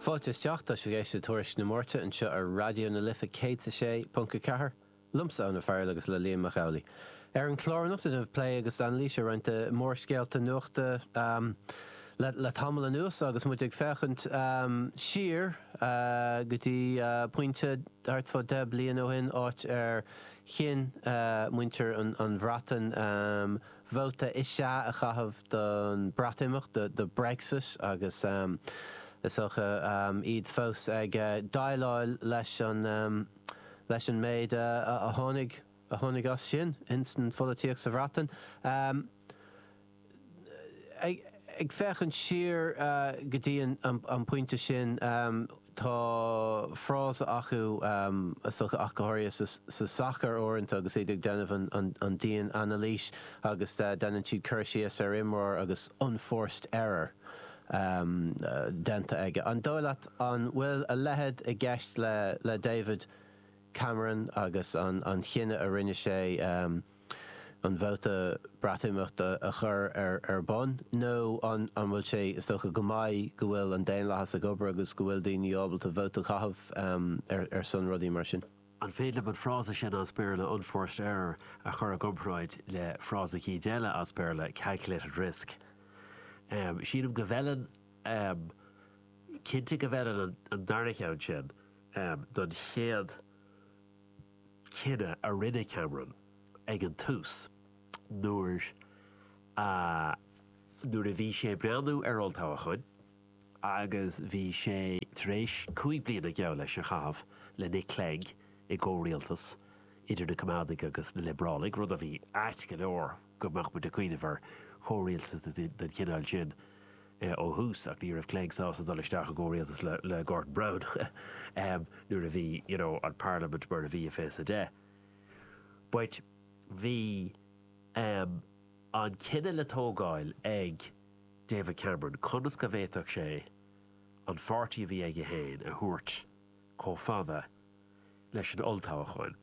Fáilte isteach, tá sibh ag éisteacht le Tuairisc na Máirte anseo ar Raidió na Life 106.4, liomsa Eoin Ó Fearghail agus le Liam Mac Amhlaigh. Ar an chlár anocht déanfaimid plé agus anailís ar roinnt de mhórscéalta nuachta le tamall anuas agus muidne ag féachaint siar go dtí pointe thart fá deich bliain ó shin, áit ar chinn muintir an Bhreatain, Vóta is ea a chaitheamh don Bhreatimeacht, do Brexit, agus is dócha iad fós ag déileáil leis an méid a tháinig as sin ins an pholaitíocht sa Bhreatain. Ag féachaint siar go dtí an pointe sin. Tá frása acu is dócha, ach go háirithe sa sacar uaireanta agus iad ag déanamh an dian-anailís agus déanann siad cur síos ar imreoir agus unforced error déanta aige. An dóigh leat an bhfuil a leithéid i gceist le David Cameron agus an chinneadh a rinne sé? an vóta Breatimeachta a chur ar bun nó an bhfuil sé is dócha go maith go bhfuil an daonlathas ag obair agus go bhfuil daoine ábalta vóta a chaitheamh ar son rudaí mar sin. An féidir liom an frása sin as Béarla 'unforced error' a chur i gcomparáid le frása cineál eile as Béarla 'calculated risk'? Sílim go bhfeileann, cinnte go bhfeileann an dara cheann sin don chéad. cinneadh a rinne Cameron ag an tús nuair a nuair a bhí sé ag breathnú ar olltoghchán agus bhí sé tar éis cúig bliana geall leis a chaitheamh le Nick Clegg i gcomhrialtas idir na Coimeádaigh agus na Liobrálaigh, rud a bhí ait go leor go mbeadh muid ag cuimhneamh ar chomhrialtas den chineál sin. ó thús ach ní raibh Clegg sásta dul isteach i gcomhrialtas le Gordon Brown nuair a bhí you know an Pharlaimint mar a bhí i fiche is a deich but bhí ehm an cinneadh le tógáil ag David Cameron conas go bhféadfadh sé an pháirtí a bhí aige féin a thabhairt chomh fada leis an olltoghchán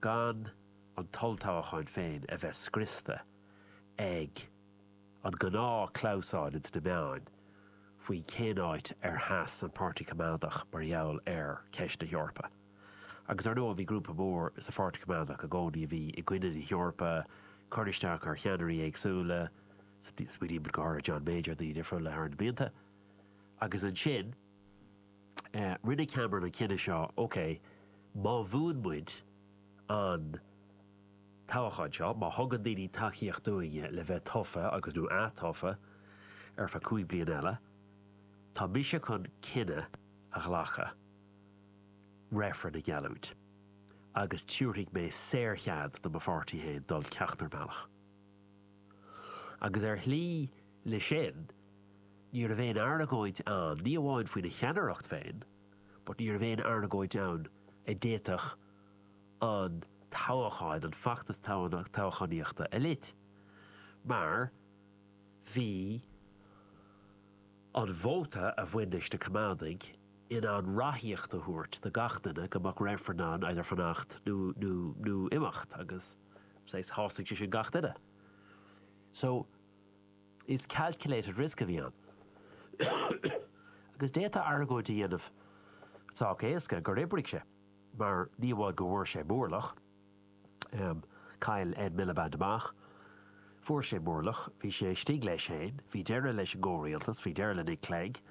gan an t-olltoghchán féin a bheith scriosta ag An gnáth clamhsán ins na meáin faoi cén áit ar sheas an Páirtí Coimeádach mar gheall ar ceist na hEorpa. Agus ar ndóigh bhí grúpa mór sa Pháirtí Coimeádach i gcónaí a bhí i gcoinne na hEorpa, ag cur isteach ar cheannairí éagsúla, smaoinímid go háirithe John Major, daoine difriúla thar na blianta. Agus ansin rinne Cameron an cinneadh seo, ok, má bhuann muid an. toghcháin seo, má thugann daoine tacaíocht dúinne le bheith tofa agus, nó ath-tofa ar feadh cúig bliana eile, tá mise chun cinneadh a ghlacadh reifreann a gheallúint agus tiúrfaidh mé saorchead do mo pháirtí féin dul ceachtar bealach. Agus ar shlí leis sin, ní raibh aon argóint ann, ní amháin faoina cheannaireacht féin, but ní raibh aon argóint ann a d'fhéadfadh, an toghacháin, an feachtas toghchánaíochta a lot, mar bhí an vóta a bhain leis na Coimeádaigh in ann ráthaíocht a thabhairt do gach duine go mbeadh reifreann ann either fanacht nó nó nó imeacht agus saghas shásaigh sé sin gach duine. So is calculated risk a bhí ann. Agus d'fhéadfá argóint a dhéanamh sách éasca gur oibrigh sé. mar ní amháin go bhfuair sé mórlach, chaill Ed Miliband amach, fuair sé mórlach, bhí sé istigh leis féin, bhí deireadh leis an gcomhrialtas, bhí deireadh le Nick Clegg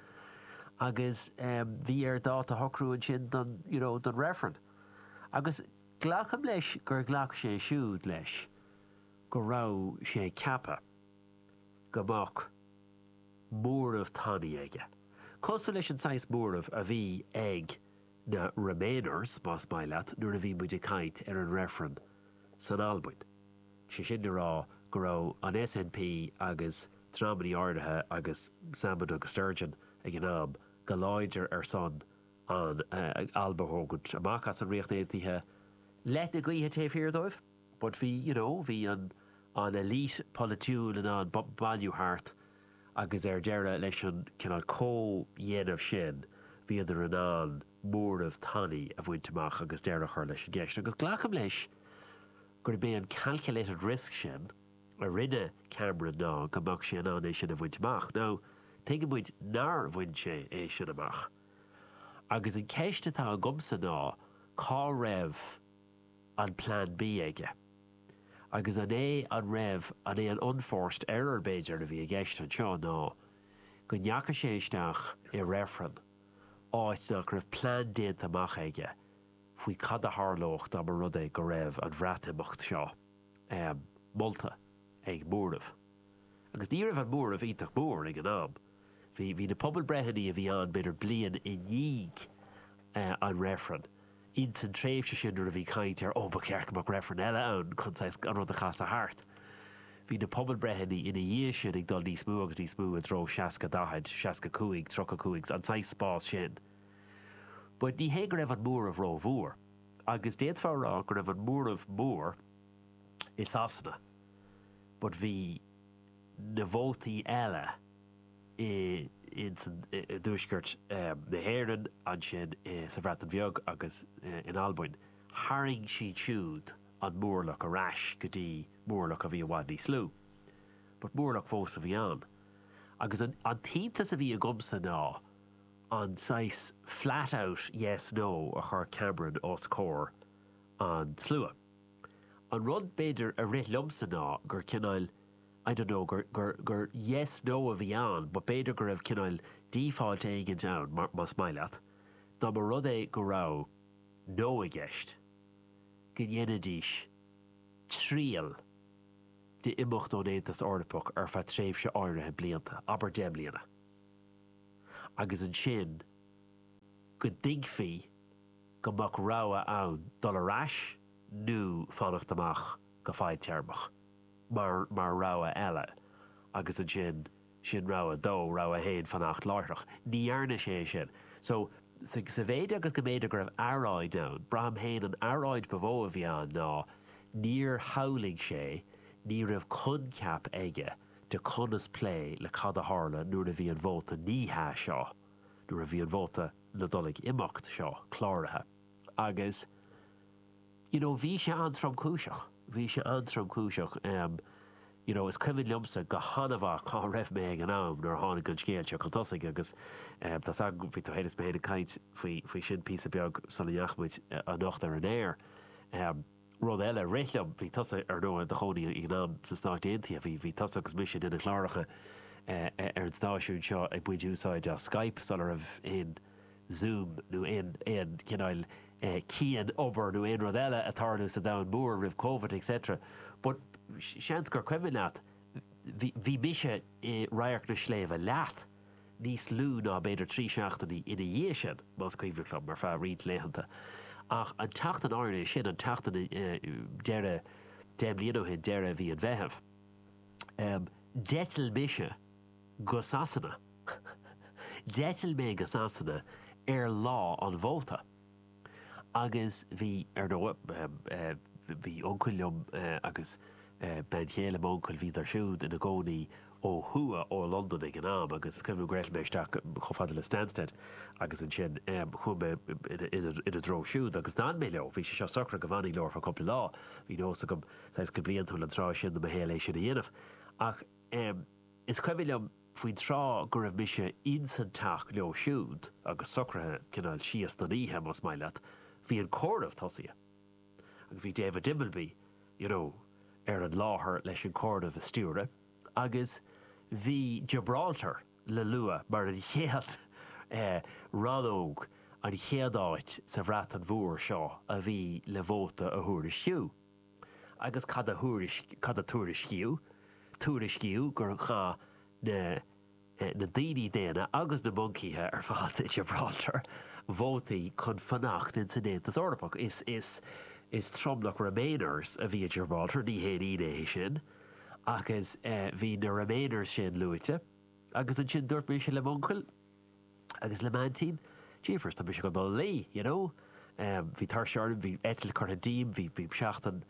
agus bhí air dáta a shocrú ansin don, you know, don reifreann. Agus glacaim leis gur ghlac sé siúd leis go raibh sé ceaptha go mbeadh móramh tanaí aige, cosúil leis an saghas móramh a bhí ag, Na Remainers, más maith leat, nuair a bhí muid ag caint ar an reifreann san Albain. Sé sin le rá go raibh an SNP agus dreamannaí áirithe agus Salmond agus Sturgeon ag an am, go láidir ar son an Alba a thógaint amach as an Ríocht Aontaithe, leoithne gaoithe taobh thiar dóibh. But bhí, you know, bhí an an elite polaitiúil in ann bailiú thart agus ar deireadh leis an cineál comhdhéanamh sin bhíodar in ann móramh tanaí a bhaint amach agus deireadh a chur leis an gceist. Agus glacaim leis gurb é an calculated risk sin a rinne Cameron ná go mbeadh sé in ann é sin a bhaint amach. Now, tuigeann muid nár bhain sé é sin amach. Agus an ceist atá agamsa ná cá raibh. an plean B aige? Agus an é an raibh an é an unforced error b'fhéidir a bhí i gceist anseo ná go ndeachaigh sé isteach i reifreann áit nach raibh plean déanta amach aige faoi cad a tharlódh dá mba rud é go raibh an Bhreatimeacht seo molta ag móramh agus ní raibh an móramh iontach mór ag an am. Bhí, bhí na pobalbreitheanna a bhí ann b'fhéidir bliain i ndiaidh an reifreann. Ins an tréimhse sin nuair a bhí caint ar, ó, ba cheart go mbeadh reifreann eile ann chun, saghas, an rud a chasadh thart. Bhí na pobalbreitheanna ina dhiaidh sin ag dul níos mó agus níos mó i dtreo seasca daichead, seasca cúig, tríocha cúig, an saghas spás sin. But ní hé go raibh an móramh rómhór. Agus d'fhéadfá a rá go raibh an móramh mór i Sasana but bhí, na vótaí eile i dtuaisceart na hÉireann, ansin sa Bhreatain Bheag agus in Albain, tharraing siad siúd an mórlach ar ais go dtí mórlach a bhí i bhfad níos lú. But mórlach fós a bhí ann. Agus an t-iontas a bhí agamsa ná an saghas flat out yes, no a chuir Cameron os comhair an tslua. An rud b'fhéidir a rith liomsa ná gur cineál, I don't know gur, gur, gur yes, no a bhí ann but b'fhéidir go raibh cineál default éigin ann mar, más maith leat, dá mba rud é go raibh no i gceist, go ndéanfaidís triail de imeacht ón Aontas Eorpach ar feadh tréimhse áirithe blianta, abair deich mbliana, agus ansin go dtuigfí go mbeadh rogha ann dul ar ais nó fanacht amach go fadtéarmach. mar rogha eile agus ansin sin rogha a dó, rogha a haon fanacht láithreach. Ní dhearna sé é sin. So, sa mhéid agus go mb'fhéidir go raibh earráid ann, braithim féin an earráid ba mhó a bhí ann ná níor shamhlaigh sé, ní raibh coincheap aige de conas plé le cad a tharlódh nuair a bhí an vóta ní hea seo, nuair a bhí an vóta na dul ag imeacht seo cláraithe agus you know bhí sé an-tromchúiseach, bhí sé an-tromchúiseach em you know is cuimhin liomsa go han-mhaith cá raibh mé ag an am nuair a tháinig an scéal seo chun tosaigh agus em tá's agam bhí tú féin is mé féin ag caint faoi faoi sin píosa beag sula ndeachaigh muid anocht ar an aer em rud eile a rith liom bhí tusa ar ndóigh i do chónaí ag an am sna Stáit Aontaithe bhí bhí tusa agus mise de na cláracha ar an stáisiún seo ag baint úsáid as Skype sula raibh aon Zoom nó aon aon chineál cianobair nó aon rud eile ag tarlú sa domhan mór roimh Covid et cetera but seans gur cuimhin leat bhí bhí mise i radharc na sléibhte leat níos lú ná b'fhéidir trí seachtainí ina dhiaidh sin más cuimhin liom ar feadh roinnt laethanta ach an tseachtain áirithe sin an tseachtain deireadh deich mbliana ó shin deireadh mhí an Mheithimh d'eitil mise Go Sasana. D'eitil mé go Sasana ar lá an vóta agus bhí, ar ndóigh, bhí uncail liom agus bean chéile m'uncail, bhíodar siúd ina gcónaí ó thuaidh ó Londain ag an am agus cuimhin gur eitil mé isteach chomh fada le Stansted agus ansin chuaigh mé ina dtreo siúd agus d'fhan mé leo. Bhí sé seo socraithe go bhfanfainn leo ar feadh cúpla lá, bhí nós agam, saghas go bliantúil an tráth sin de mo shaol é sin a dhéanamh ach Em, is cuimhin liom faoin tráth go raibh mise ins an teach leo siúd agus socraithe cineál síos don oíche, más maith leat, bhí an comhaireamh tosaithe agus bhí David Dimbleby, you know, ar an láthair leis an comhaireamh a stiúradh agus bhí Gibraltar le lua mar an chéad, eh, rannóg, an chéad áit sa Bhreatain Mhór seo a bhí le vóta a thuairisciú. agus cad a tuairiscíodh? Tuairiscíodh gur chaith na daoine daonna agus na moncaithe ar fad i nGiobráltar vótaí chun fanacht ins an Aontas Eorpach. Is tromlach remainers a bhí i nGiobráltar, ní haon ionadh é sin, agus bhí na remainers sin luaite. Agus ansin dúirt mise le m'uncail. Agus le m'aintín, jeepers, tá mise chun dul a luí, you know. Bhí tuirse orm, bhí eitilt curtha díom, bhí seachtain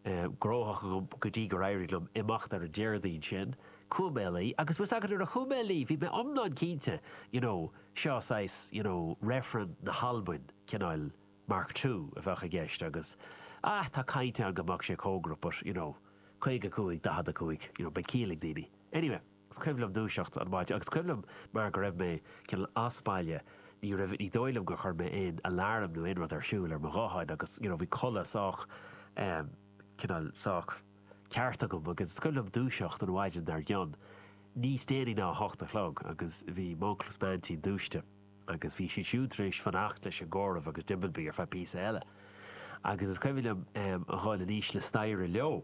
gnóthach agam go dtí gur éirigh liom imeacht ar an Déardaoin sin. Chuaigh mé a luí. Agus bhfuil 's agat, nuair a chuaigh mé a luí, bhí mé iomlán cinnte, you know, seo saghas, you know, reifreann na hAlbain, cineál Mark Two a bheadh i gceist agus, ah, tá caint ann go mbeadh sé cóngarach but, you know, caoga cúig, daichead a cúig, you know, beidh ciall ag daoine. Anyway. Is cuimhin liom dúiseacht an mhaidin agus cuimhin liom mar go raibh mé cineál as baile, ní raibh, ní dóigh liom gur chuir mé aon alarm nó aon rud ar siúl ar mo ghuthán agus you know bhí codladh sách ehm cineál sách ceart agam agus is cuimhin liom dúiseacht an mhaidin dar gcionn, níos déanaí ná a hocht a chlog agus bhí m'uncail is m'aintín dúisithe agus bhí siad siúd tar éis fanacht leis an gcomhaireamh agus Dimbleby ar feadh píosa eile agus is cuimhin liom ehm a dhul aníos an staighre leo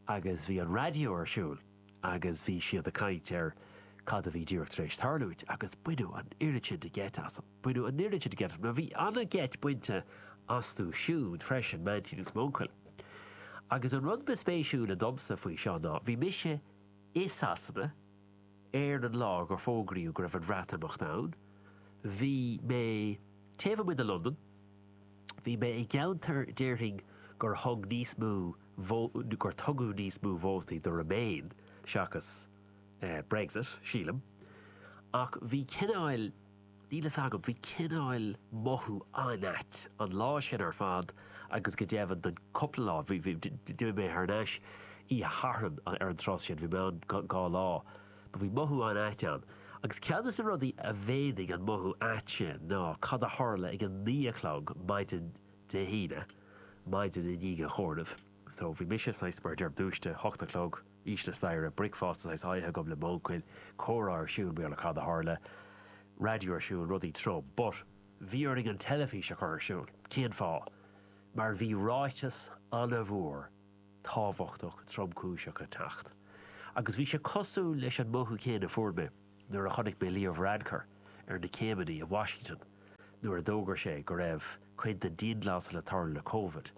agus bhí an raidió ar siúl agus bhí siad ag caint ar cad a bhí díreach tar éis tarlúint agus baineadh an oiread sin de gheit asam. Baineadh an oiread sin de gheit asam mar bhí an-gheit bainte astu siúd freisin, m'aintín agus m'uncail. Agus an rud ba spéisiúla domsa faoi seo ná bhí mise i Sasana ar an lá gur fógraíodh go raibh an Bhreatimeacht ann, bhí mé taobh amuigh de Londain, Bhí mé i gceantar déarfainn gur thug níos mó gur tugadh níos mó vótaí do Remain seachas Brexit, sílim, ach bhí cineáil, níl fhios agam, bhí cineáil mothú an-ait an lá sin ar fad agus go deimhin don cúpla lá, d'imigh mé thar n-ais oíche Shathairn an tráth sin, bhí mé ann dhá lá. Do bhí mothú an-ait ann. Agus ceann de na rudaí a mhéadaigh an mothú ait sin ná cad a tharla ag a naoi a chlog maidin Dé hAoine, maidin i ndiaidh an chomhairimh. So, bhí mise, saghas, mar a deirim, dúiste, hocht a chlog, síos na staighre, bricfeasta, saghas, aige agam le m'uncail, comhrá ar siúl, Bhuel cad a tharla, raidió ar siúl, rudaí trom. But, bhí orainn an teilifís a chur ar siúl. Cén fáth? Mar bhí ráiteas an-mhór tábhachtach tromchúiseach ag teacht agus bhí sé cosúil leis an mothú céanna a fuair mé nuair a chonaic mé Leo Varadkar ar na céimeanna i Washington nuair a d'fhógair sé go raibh cinnte dianghlasáil le tarlú le Covid.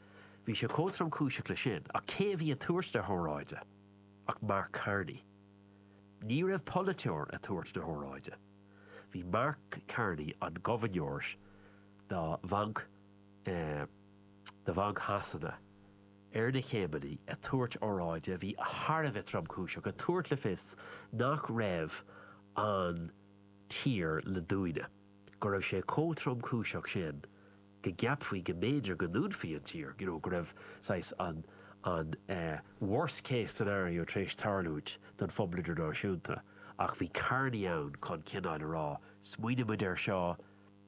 Bhí sé chomh tromchúiseach leis sin ach cé a bhí ag tabhairt na hóráide ach Mark Carney. Ní raibh polaiteoir ag tabhairt na hóráide. Bhí Mark Carney, an gobharnóir do Bhanc Shasana, ar na céimeanna ag tabhairt óráide a bhí thar a bheith tromchúiseach, ag tabhairt le fios nach raibh an tír le dúnadh, go raibh sé chomh tromchúiseach sin go gceapfaí go mb'fhéidir go ndúnfaí an tír, you know, go raibh saghas an an worst case scenario tar éis tarlúint don phobal idirnáisiúnta ach bhí Carney ann chun cineáil a rá, smaoinigh muid air seo,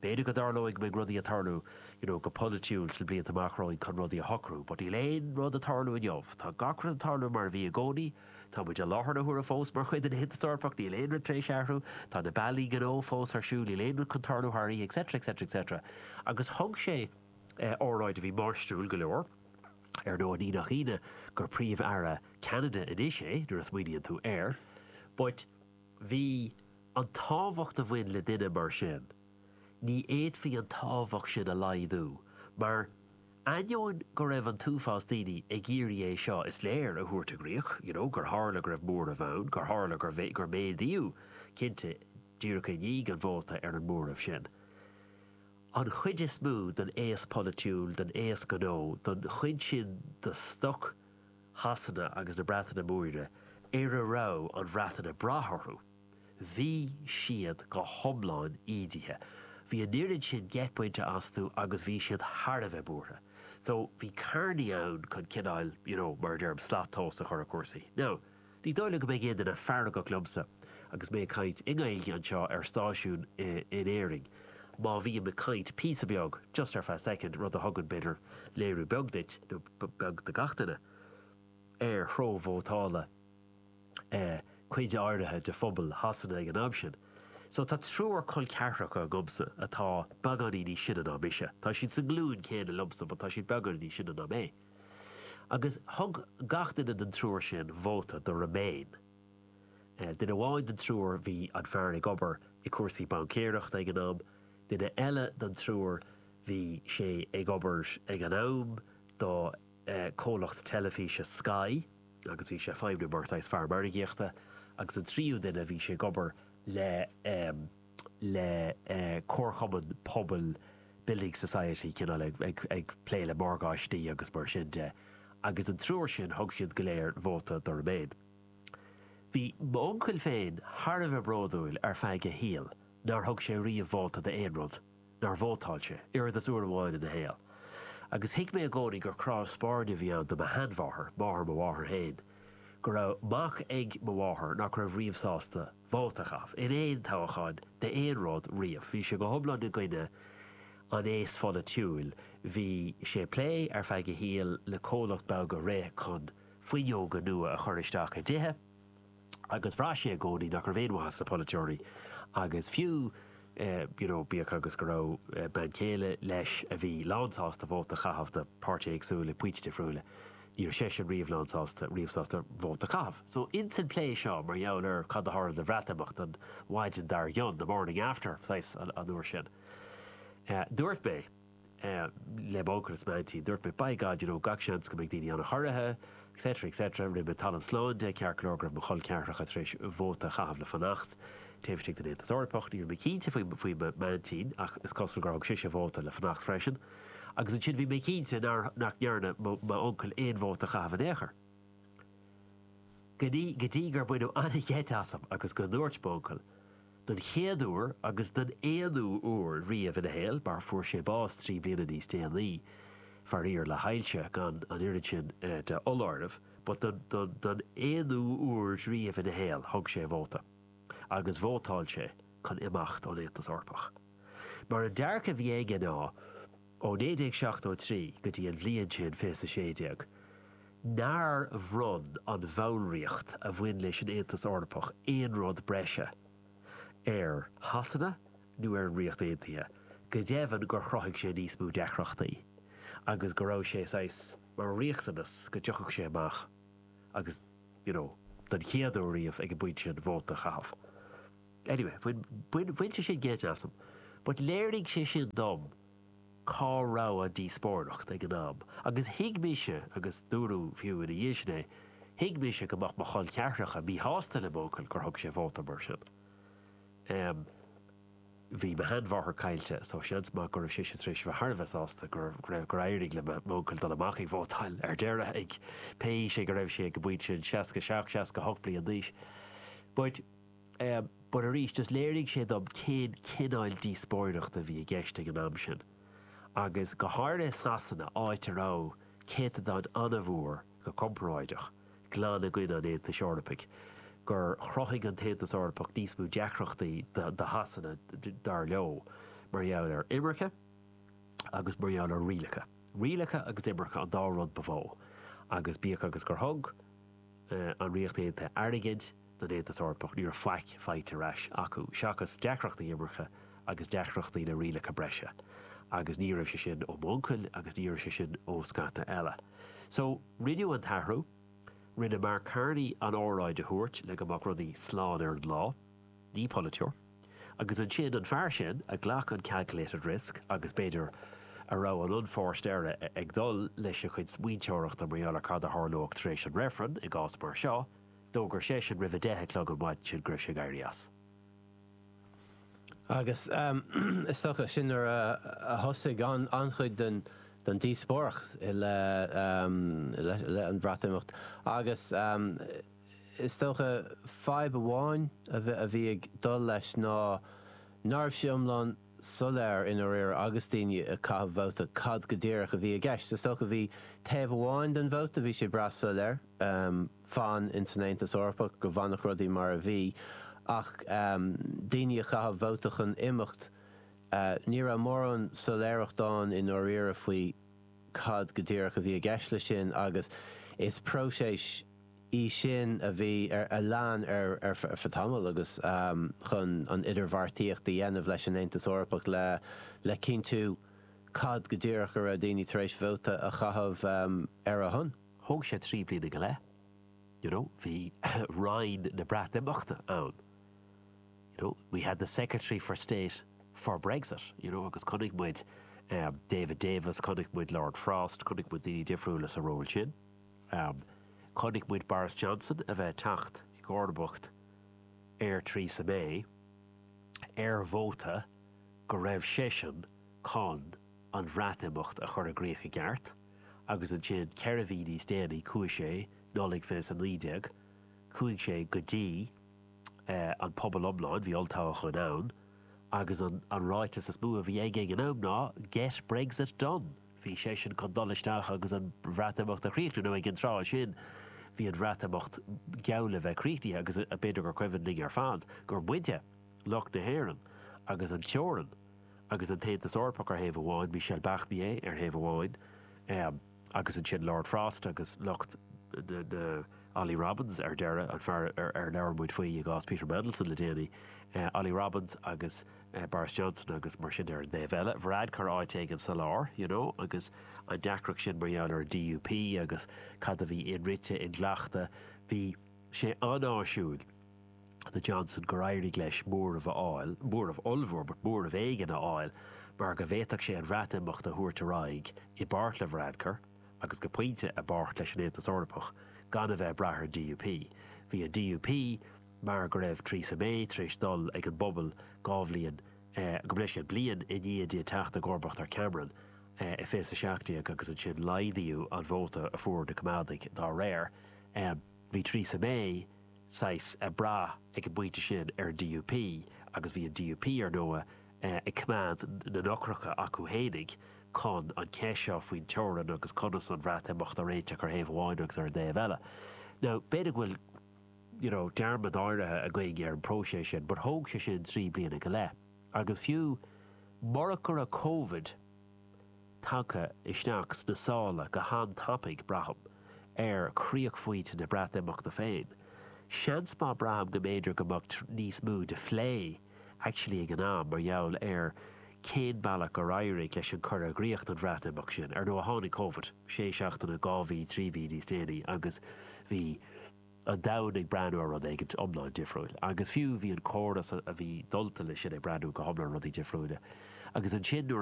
Beidh, go dtarlóidh go mbeidh rudaí ag tarlú you know go polaitiúil sna blianta amach romhainn chun rudaí a shocrú but níl aon rud ag tarlú inniu. Tá gach rud ag tarlú mar a bhí i gcónaí. Táimid i láthair na huaire fós mar chuid den Aontas Eorpach, níl aon rud tar éis athrú. Tá na bealaí gnó fós ar siúl, níl aon rud chun tarlú thar oíche etc etc etc. Agus thug sé óráid a bhí máistriúil go leor. Ar ndóigh ní nach ionadh gur Príomh-Aire Cheanada anois é nuair a smaoiníonn tú air. But. Bhí, an tábhacht a bhain le duine mar sin, ní fhéadfaí an tábhacht sin a laghdú, mar, ainneoin go raibh an t-uafás daoine ag iarraidh é seo, is léir, a thabhairt i gcríoch, you know, gur tharla go raibh móramh ann, gur tharla gur, gur méadaíodh, cinnte, díreach i ndiaidh an vóta, ar an móramh sin. An chuid is mó den aos polaitiúil, den aos gnó, den chuid sin de stoc, Shasana agus na Breataine Móire ar a raibh an Bhreatain ag brath orthu, bhí siad go hiomlán ídithe. Bhí an oiread sin geit bainte astu agus bhí siad thar a bheith buartha. So, bhí Carney ann chun cineáil, you know, mar a deirim, slat tomhas a chur ar chúrsaí. Now, Ní dóigh liom go mbeidh aon duine feargach liomsa agus mé ag caint i nGaeilge anseo ar stáisiún in Éirinn. Má bhím ag caint píosa beag, just ar feadh soicind, rud a thugann, b'fhéidir, léiriú beag duit, nó beag do gach duine, ar threo vótála cuid áirithe de phobal Shasana ag an am sin. So tá triúr col ceathracha agamsa atá beagáinín níos sine ná mise. Tá siad sa nglúin chéanna liomsa but tá siad beagáinín níos sine ná mé. Agus thug gach duine den triúr sin vóta do Remain. Duine amháin den triúr, bhí an fear ag obair i cúrsaí baincéireachta ag an am, duine eile den triúr, bhí sé ag obair ag an am do chomhlacht teilifíse Sky agus bhí sé ag feidhmniú mar saghas fear margaíochta agus an tríú duine, bhí sé ag obair le le comharchumann pobail, building society, cineál ag, ag, ag plé le morgáistí agus mar sin de. Agus an triúr sin, thug siad go léir vóta do remain. Bhí m'uncail féin thar a bheith bródúil ar feadh a shaoil nár thug sé riamh vóta d'aon rud. nár vótáil sé, oiread is uair amháin ina shaol. Agus thuig mé i gcónaí gur cnámh spairne a bhí ann do mo sheanmháthair, máthair mo mháthar féin. Go raibh mac ag mo mháthair nach raibh riamh sásta vóta a chaitheamh, in aon toghchán d'aon rud riamh. Bhí sé go hiomlán i gcoinne an aosa pholaitiúil. Bhí sé ag plé, ar feadh a shaoil, le comhlacht beag a rith chun fuinneoga nua a chur isteach i dtithe. agus bhraith sé i gcónaí nach raibh aon mhaith sna polaiteoirí agus fiú you know bíodh agus go raibh bean chéile leis a bhí lánsásta vóta a chaitheamh do pháirtithe éagsúla ag pointí difriúla ní raibh seisean riamh lánsásta riamh sásta vóta a chaitheamh. So ins an plé seo mar gheall ar cad a tharla de Bhreatimeacht an mhaidin dár gcionn, the morning after, saghas, an uair sin, dúirt mé. le m'uncail is m'aintín. Dúirt mé, By God, you know, gach seans go mbeidh daoine ana-chorraithe, etc, etc. Rinne mé talamh slán de, ceart go leor, go raibh mo chol ceathracha tar éis vóta a chaitheamh le fanacht taobh istigh den Aontas Eorpach. Ní raibh mé cinnte faoi m'aintín, ach is cosúil gur thug sise vóta le fanacht freisin. Agus ansin bhí mé cinnte nár, nach ndearna, mo, m'uncail aon vóta a chaitheamh in aon chor. Go dtí, go dtí gur baineadh an-gheit asam agus go ndúirt m'uncail, don chéad uair agus don aonú uair riamh ina shaol mar fuair sé bás trí bliana níos déanaí, faraor, le hailse, gan an oiread sin de fholáireamh, but don, don, don aonú uair riamh ina shaol, thug sé vóta, agus vótáil sé chun imeacht ón Aontas Eorpach. Mar an dearcadh a bhí aige ná. Ó 1973 go dtí an bhliain sin, fiche a sé déag, nár bhronn an bhallraíocht a bhain leis an Aontas Eorpach aon rud breise ar Shasana nó ar an Ríocht Aontaithe, go deimhin gur chruthaigh sé níos mó deacrachtaí agus go raibh sé saghas mar riachtanas go dtiocfadh sé amach agus, you know, don chéad uair riamh ag an bpointe sin vóta a chaitheamh. Anyway, bhain bhain sé sin geit asam. But léirigh sé sin dom cá raibh an díospóireacht ag an am agus thuig mise, agus dúradh fiú ina dhiaidh sin é, thuig mise go mbeadh mo chol ceathracha míshásta le m'uncail gur thug sé vóta mar sin. Em, bhí mo sheanmháthair caillte so seans maith go raibh seisean tar éis a bheith thar a bheith sásta go raibh, gur éirigh le m'uncail dul amach ag vótáil ar deireadh ag pé aois go raibh sé ag an bpointe sin, 67, 68 bliain d'aois. But. But arís, just léirigh sé dom cén cineál díospóireachta a bhí i gceist ag an am sin. Agus go háirithe i Sasana, áit a raibh céatadán an-mhór, go comparáideach, glan i gcoinne an Aontais Eorpaigh, gur chruthaigh an tAontas Eorpach níos mó deacrachtaí do Shasana, dar leo, mar gheall ar imirce agus mar gheall ar rialacha. Rialacha agus imirce an dá rud ba mhó. Agus bíodh agus gur thug an Ríocht Aontaithe airgead, don Aontas Eorpach, ní raibh faic faighte ar ais acu seachas deacrachtaí imirce agus deacrachtaí le rialacha breise agus ní raibh sé sin ó m'uncail agus ní raibh sé sin ó scata eile. So, rinneadh an t-athrú. Rinne Mark Carney an óráid a thabhairt le go mbeadh rudaí slán ar an lá. Ní polaiteoir. Agus ansin, an fear sin a ghlac an calculated risk agus, b'fhéidir, a raibh an unforced error ag dul lena chuid smaointeoireachta mar gheall ar cad a tharlódh tar éis an reifrinn i gcás mar seo, D'fhógair seisean roimh a deich a chlog ar maidin go raibh sé ag éirí as. Agus is dócha sin nuair a thosaigh an-chuid den díospóireacht i leith an Bhreatimeachta. Agus is dócha fadhb amháin a bhí ag dul leis ná nárbh sé iomlán. soiléir i ndáiríre agus daoine ag caitheamh vóta cad go díreach a bhí i gceist. Is dócha bhí taobh amháin den vóta, bhí sé breá soiléir, fan in san Aontas Eorpach, go bhfanfadh rudaí mar a bhí. Ach daoine a chaith vóta chun imeacht, ní raibh mórán soiléireacht ann i ndáiríre faoi cad go díreach a bhí i gceist leis sin agus is próiseas, í sin a bhí ar a lean ar feadh tamaill agus chun an idirbheartaíocht a dhéanamh leis an Aontas Eorpach le cinntiú cad go díreach a raibh daoine tar éis vóta a chaitheamh ar a shon. Thóg sé trí bliana go leith. You know, bhí Roinn na Breatimeachta ann. You know, we had the Secretary for State for Brexit, you know agus chonaic muid David Davis, chonaic muid Lord Frost, chonaic muid daoine difriúla sa ról sin. Chonaic muid Boris Johnson a bheith ag teacht i gcomharbacht ar Theresa May ar vóta go raibh seisean chun an Bhreatimeacht a chur i gcrích i gceart agus ansin ceithre mhí níos déanaí chuaigh sé, Nollaig 2019, chuaigh sé go dtí an pobal iomlán, bhí olltoghchán ann agus an ráiteas is mó a bhí aige ag an am ná 'Get Brexit done'. Bhí seisean chun dul isteach agus an Bhreatimeacht a chríochnú, nó ag an tráth sin, bhí an Bhreatimeacht geall le bheith críochnaithe agus b'fhéidir gur cuimhin linn ar fad gur muide, lucht na hÉireann, agus an teorainn agus an tAontas Eorpach ar thaobh amháin, Michel Barnier ar thaobh amháin agus ansin Lord Frost agus lucht na, Olly Robbins ar deireadh, an fear ar labhair muid faoi i gcás Peter Mandelson le déanaí, Olly Robbins agus. Boris Johnson agus mar sin ar an dtaobh eile, Varadkar áit éigin sa lár, you know, agus an deacracht sin mar gheall ar an DUP agus cad a bhí inrite, inghlachta, bhí sé an-áisiúil do Johnson gur éirigh leis móramh a fháil, ní móramh ollmhór but móramh éigin a fháil mar go bhféadfadh sé an Bhreatimeacht a thabhairt ar aghaidh, i bpáirt le Varadkar agus go pointe, i bpáirt leis an Aontas Eorpach, gan a bheith ag brath ar an DUP. Bhí an DUP. mar go raibh Theresa May tar éis dul ag an bpobal dhá bhliain gabh mo leithscéal, bliain i ndiaidh di teacht i gcomharbacht ar Cameron i 2017 agus ansin laghdaíodh an vóta a fuair na Coimeádaigh dá réir bhí Theresa May saghas ag brath ag an bpointe sin ar an DUP agus bhí an DUP ar ndóigh ag coimeád na n-eochracha acu fhéinig chun an cheist seo faoin teorainn agus conas an Bhreatimeacht a réiteach ar thaobh amháin agus ar an dtaobh eile now b'fhéidir go bhfuil you know, dearmad áirithe againn ar an próiseas sin but thóg sé sin trí bliana go leith agus fiú murach go raibh Covid tagtha isteach sna sála go han-tapaidh, braithim, ar chríochphointe na Breatimeachta féin, seans maith braithim go mb'fhéidir go mbeadh níos mó de phlé Actually ag an am, mar gheall ar cén bealach gur éirigh leis an cur i gcrích don Bhreatimeacht sin, ar ndóigh tháinig Covid sé seachtaine, dhá mhí, trí mhí níos déanaí agus bhí an domhan ag breathnú ar rud éigint iomlán difriúil agus fiú bhí an córas a bhí dulta leis sin ag breathnú go hiomlán rudaí difriúla agus ansin nuair a